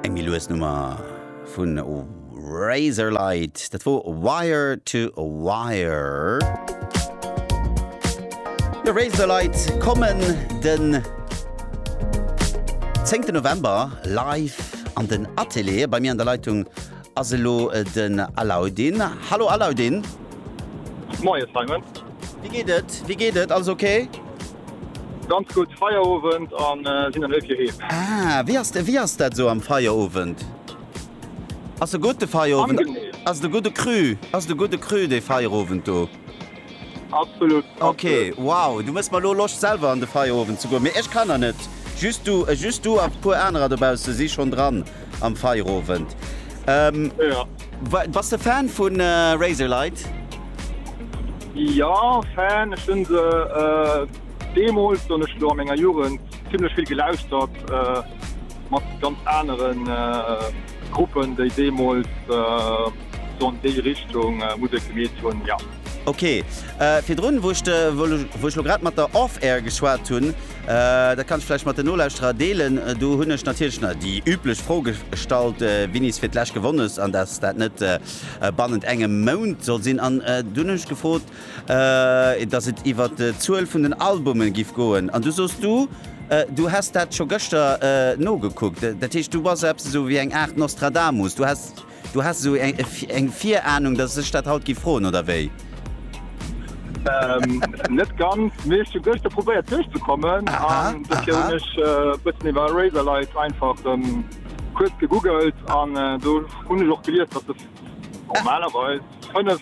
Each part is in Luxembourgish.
Eng méi lues Nummer vun Razorlight, dat wor Wire to Wire. Jo, Razorlight kommen den 10 November live an den Atelier. Bei mir an der Leitung ass elo den Alauddin. Hallo Alauddin. Moie Simon. Wéi geet et? Wéi geet et? Alles ok? Ganz gutt Feierowend an sinn dann hei fir heem. Ah wéi ass de, wéi ass dat esou am Feierowend? Ass e gutt de Feierowend? Angenehm. Ass et e gudde Cru? Ass et e gudde Cru dee Feierowend do? Absolut. Ok, wow, du mëss mer elo Loscht selwer an de Feierowend ze goen, mee ech kann der net. Just du, just du a puer anerer dobausse si schonn dran. Am Feierowend ehm. Ja. Bass de Fan vun Razorlight? Jo, Fan. Ech hunn se deemools, soen ech elo, a menger Jugend zimmlech vill gelauschtert, mat ganz anere Gruppen, déi deemools sou an déi Richtung Musek gemeet hunn, jo. Ok. Virdrun, wou ech elo grad mat der Off Air geschwat hunn, Dat kann ech vläicht mat den Nolauschterer deelen. Do hunn ech natierlech nach déi üblech Fro gestallt, wien is fir d'lescht gewonn hues an dass dat net bannent engem Mount soll sinn. An du hunn ech gefrot, dass et iwwert d'Zuel vun den Albumen giff goen. An du soos du, du häss dat scho gëschter nogekuckt. Dat heescht, du bass eppes esou wéi eng Aart Nostradamus. Du häss. Du has esou eng Virahnung, dass ech dat haut gi froen, oder wéi? Net ganz, mee ech hu gëschter probéiert duerchzekommen an dofir hunn ech e bëssen iwwer Razerlight einfach kuerz gegoogelt an do hunn ech och gelies, dass se normalerweis fënnef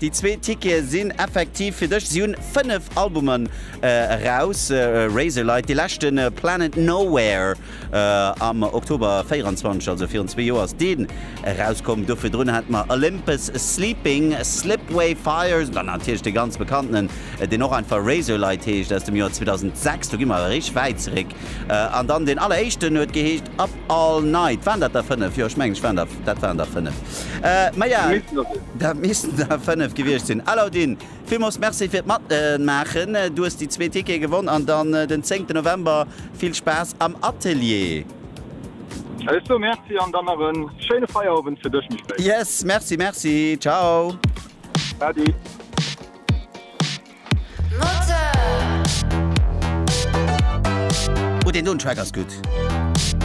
Déi zwee Tickete sinn effektiv fir dech. Si hunn 5 Albumen eraus, Razorlight, dee leschten, Planet Nowhere am Oktober 24, also virun zwee Joer ass deen erauskomm. Do virdrun hate mer Olympus Sleeping, Slipway Fires an dann natierlech dee ganz bekannten, deen och einfach Razorlight heescht, aus dem Joer 2006. Do gi mer awer eréischt wäit zeréck. An dann deen alleréischten huet geheescht Up All Night. Waren dat der fënnef? Jo, ech mengen, ech waren der, dat waren der fënnef. Mä ja, dat missten der fënnef gewiescht sinn. Alaudin, villmools Merci fir d'Matmaachen. Du hues déi zwee Tickete gewonn an dann den zéngten November vill Spaass am Atelier. Ech soe Merci an dann nach e schéine Feierowend fir dech méi spéit. Yes, Merci, Merci. Ciao. Adi. Moteur! Oh deen doen Track ass gudd!